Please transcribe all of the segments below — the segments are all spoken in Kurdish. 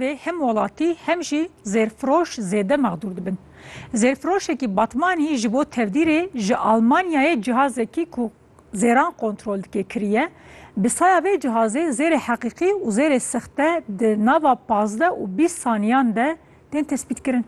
vê hem welatî hem jî zêrfiroş zêde mexdûr dibin. Zêrfiroşekî Batmanî ji bo tevdîrê ji Almanyayê cihazekî ku zêran kontrol dike kiriye. Bi saya vê cihazê zêrê heqîqî û zêrê sexte di nava pazdeh û bîst saniyan de tên tespîtkirin.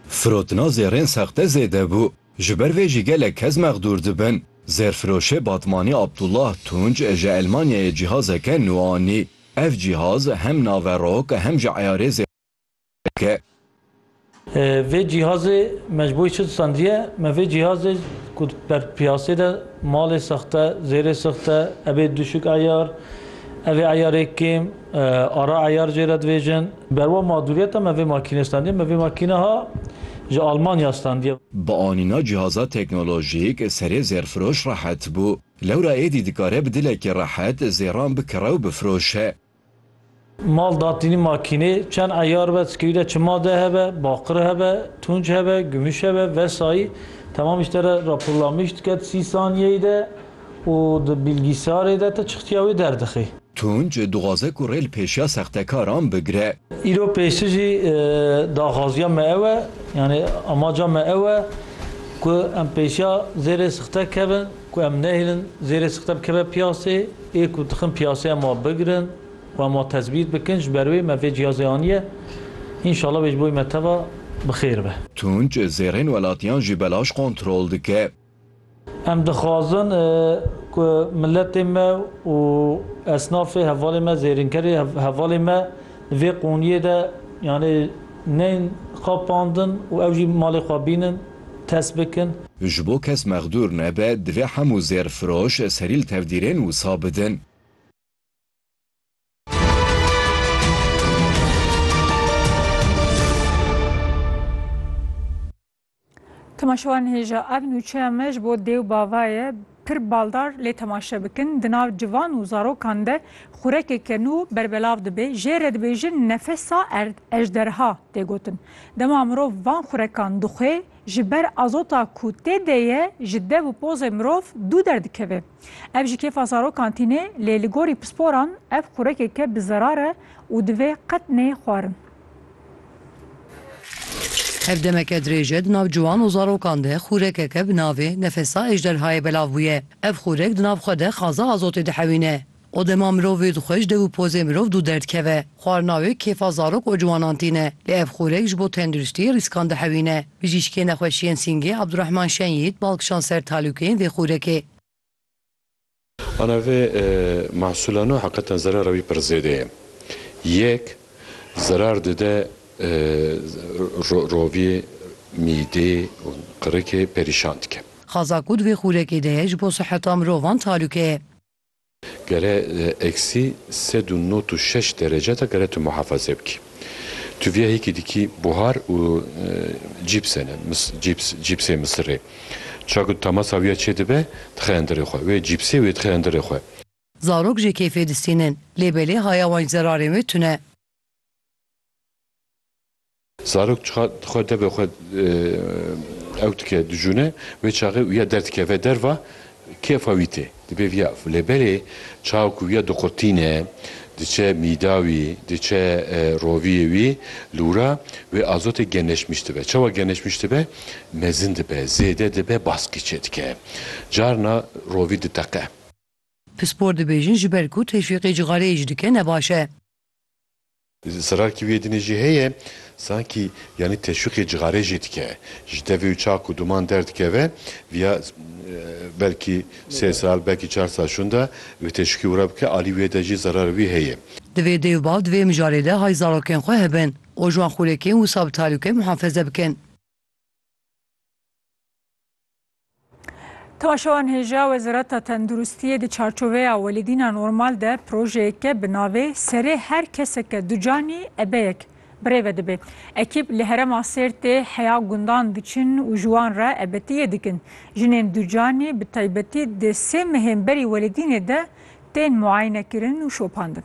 Firotina zêrên sexte zêde bû. Ji ber vê jî gelek kes mexdûr dibin. Zêrfiroşê Batmanî Abdullah Tunç ji Elmanyayê cîhazeke nû anî. Ev cîhaz hem naverok hem jî eyarê zêrfiroşê dike. Vê cîhazê me ji bo çi disandiye? Me vê cîhazê ku ber piyasê de malê sexte, zêrê sexte, ebê duşik eyar, evê eyarê kêm, Ara Eyar jê re dibêjin, Berwa madûriyeta me vê makînê standiye, me vê makîneha ji Almanya standiye. Bi anîna cîhaza teknolojîk serê zêrfiroş rehet bû. Lewra êdî dikare bi dilekî rehet zêran bikire û bifroşe. Mal datînî makînê çend eyar be, ti kewî de çi made hebe, baqir hebe, tunç hebe, gumîş hebe, vesayî temamî ji te re raporlamiş dike di sî saniyeyî de. Û di bilgîsarê de te çixtiya wê derdixî. Tunç, dixwaze ku rê li pêşiya sextekaran bigire. Îro pêşî jî daxwaziya me ew e, yanî amaca me ew e ku em pêşiya zêrê sixte kevin, ku em nehêlin zêrê sixte bikeve piyasê, ê ku dixin piyasê em wa bigirin û em wa tezbît bikin, ji ber wê me vê cihazê aniye, înşala wê ji bo wê me teva bi xêr be. Tunç, zêrên welatiyan jî belaş kontrol dike. Em dixwazin ku miletê me û esnafê hevalê me, zêrînkerê hevalê me di vê qûniyê de yanê neyên xapandin û ew jî malê xwe bînin, test bikin. Ji bo kes mexdûr nebe, divê hemû zêrfiroş serî li tevdîrên wisa bidin. Temaşewan hêja ev nûçeya me ji bo dêw bava ye pir baldar lê temaşe bikin di nav civan û zarokan de xurekeke nû berbelav dibê jê re dibêjin nefesa erd ejderha tê gotin dema mirov van xurekan dixwê ji ber azota ku tê de ye ji dev û pozê mirov dû derdikeve ev ji kêfa zarokan tîne lê li gorî pisporan ev xurekeke bi zerar e û divê qet neyê xwarin. Ev demeke dirêj e di nav ciwan û zarokan de xûrekeke bi navê Nefesa Ejderhayê belav bûye. Ev xûrek di nav xwe de xaza azotê dihewîne. O dema mirovê dixwe ji dev û pozê mirov dû derdikeve. Xwarina wê kêfa zarok û ciwanan tîne. Lê ev xûrek ji bo tenduristiyê rîskan dihewîne. Bijîşkê nexweşiyên sîngê Abdurehman Şenyît bal kişand ser talûkeyên vê xûrekê. Ana vê mehsûlano heqetan zerera wî pir zêde ye. Yek, zerar dide roviyê, mîdê û qirikê perîşan dike. Xaza ku di vê xûrekê de ye ji bo siheta mirovan talûke ye. Gere eksî sed û nod û şeş derece de gere tu muhafaze bikî. Tu viyahêkî dikî buhar û cîpsene, cîps, cîpsê misirê. Çav ku temasa wî ya çêdibe, dixe endirê xwe. Wê cîpsê wê dixe endirê xwe. Zarok jê keyfê distînin. Lê belê haya wan ji zerarên wê tune. Zarok çiqa dixwe debê xwe ew dike, dijûne. Wê çaxê wî ya derdikeve derva. Kêfa wî tê. Dibê viya lê belê çawa ku viya diqurtîne, diçe mîda wî, diçe roviyê wî lûra wê azotê geneşmiş dibe. Çawa geneşmiş dibe? Mezin dibe, zêde dibe, baskî çêdike. Carna rovî diteqe. Pispor dibêjin ji ber ku teşwîqê cixareyê jî dike ne baş e. Zerarkî wî êdînê jî heye, sankî yanî teşwîqê cixarê jî dike. Ji devê û çak û duman derdikeve, vîya belkî sê sal, belkî çar sal şûnda wê teşwîqê wira bike, alî wê de jî zerar wî heye. Divê dê û bav di vê mijarê de hay zarokên xwe hebin û ji wan xûlêkên wisa bi tarî û kêm muhafeze bikin. Temaşewan hêja Wezareta Tenduristiyê di çarçoveya welîdîna normal de projeyeke bi navê Serê her keseke ducanî ebeyek birêve dibe. Ekîb li herema Sêrtê heya gundan diçin û ji wan re ebetiyê dikin. Jinên ducanî bi taybetî di sê mehên berî welîdînê de tên muayinekirin û şopandin.